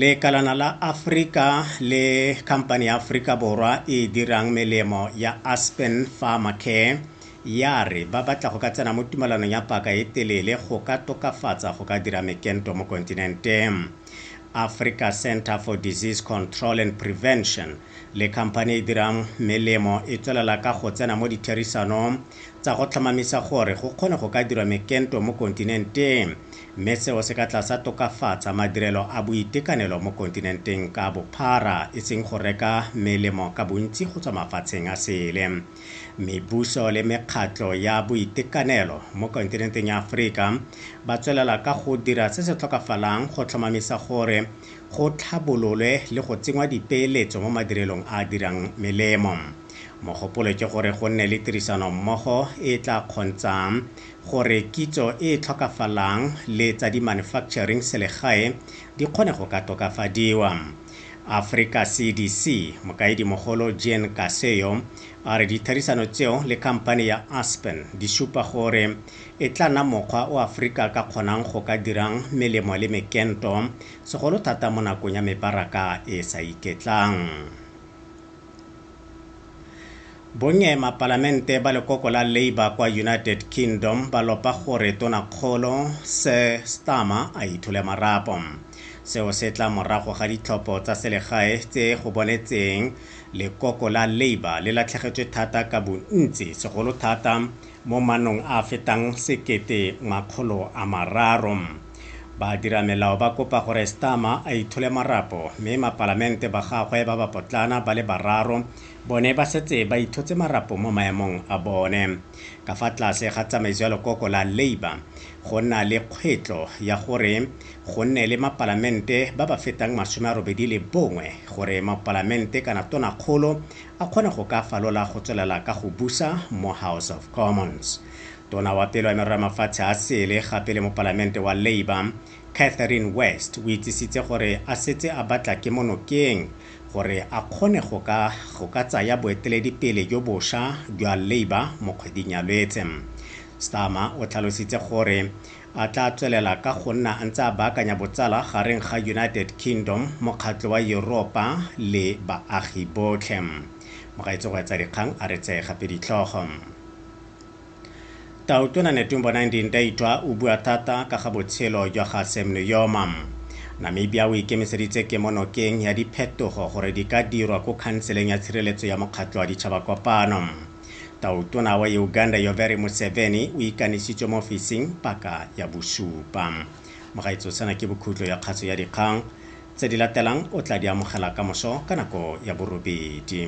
Lekalana la Afrika le khamphane ya Aforika Borwa e e dirang melemo ya Aspen Pharmacare ya re ba batla go ka tsena mo tumalanong ya paka e telele go ka tokafatsa go ka dira mekento mo kontinenteng. Africa Centre for Disease Control and Prevention le khamphane e e dirang melemo e tswelela ka go tsena mo ditherisanong tsa go tlhomamisa gore go kgone go ka dirwa mekento mo kontinenteng mme seo se ka tla sa tokafatsa madirelo a boitekanelo mo kontinenteng ka bophara, e seng go reka melemo ka bontsi go tswa mafatsheng a sele. Mebuso le mekgatlho ya boitekanelo mo kontinenteng ya Aforika ba tswelela ka go dira se se tlhokafalang go tlhomamisa gore go tlhabololwe le go tsenngwa dipeeletso mo madirelong a a dirang melemo. Mogopolo ke gore go nne le tirisanommogo e e tla kgontshang gore kitso e e tlhokafalang le tsa di-manufacturing selegae di kgone go ka tokafadiwa. Africa CDC, Mokaedimogolo Jean Kaseyo, a re ditherisano tseo le khamphane ya Aspen di supa gore e tla nna mokgwa o Afrika ka kgonang go ka dirang melemo le mekento, segolo thata mo nakong ya mebaraka e e sa iketlang. Bonnye mapalamente ba lekoko la Labour kwa United Kingdom ba lopa gore Tonakgolo Sir Starmer a ithole marapo. Seo se tla morago ga ditlhopho tsa selegae tse go bonetseng lekoko la Labour le latlhegetswe thata ka bontsi, segolo thata mo manong a a fetang sekete makgolo a mararo. Badiramelao ba kopa gore Starmer a ithole marapo mme mapalamente ba gagwe ba bapotlana ba le bararo bone ba setse ba ithotse marapo mo maemong a bone. Ka fa tlase ga tsamaiso ya lekoko la Labour, go na le kgwetlo ya gore go nne le mapalamente ba ba fetang masome a robedi le bongwe gore mopalamente kana tonakgolo a kgone go ka falola go tswelela ka go busa mo House of Commons. Tona wa pele wa Merero ya Mafatshe a Sele gape le mopalamente wa Labour, Catherine West o itsisitse gore a setse a batla kemo nokeng gore a kgone go ka go ka tsaya boeteledipele jo bosha jwa Labour mo kgweding ya Lwetse. Starmer o tlhalositse gore a tla tswelela ka go nna a ntse a baakanya botsala gareng ga United Kingdom, Mokgatlho wa Yuropa le baagi botlhe. Mogaetsho go etsa dikgang a re tseye gape ditlhogo. Tautona Netumbo Nandi-Ndaitwah o bua thata ka ga botshelo jwa ga Sam Nujoma. Namibia o ikemiseditse kemonokeng ya diphetogo gore di ka dirwa ko Khanseleng ya Tshireletso ya Mokgatlho wa Ditšhabakopano. Tautona wa Uganda Yoweri Museveni o ikanisitswe mo ofising paka ya bosupa. Mogaetsho sena ke bokhutlo ya kgatso ya dikgang. Tse di latelang o tla di amogela kamoso ka nako ya borobedi.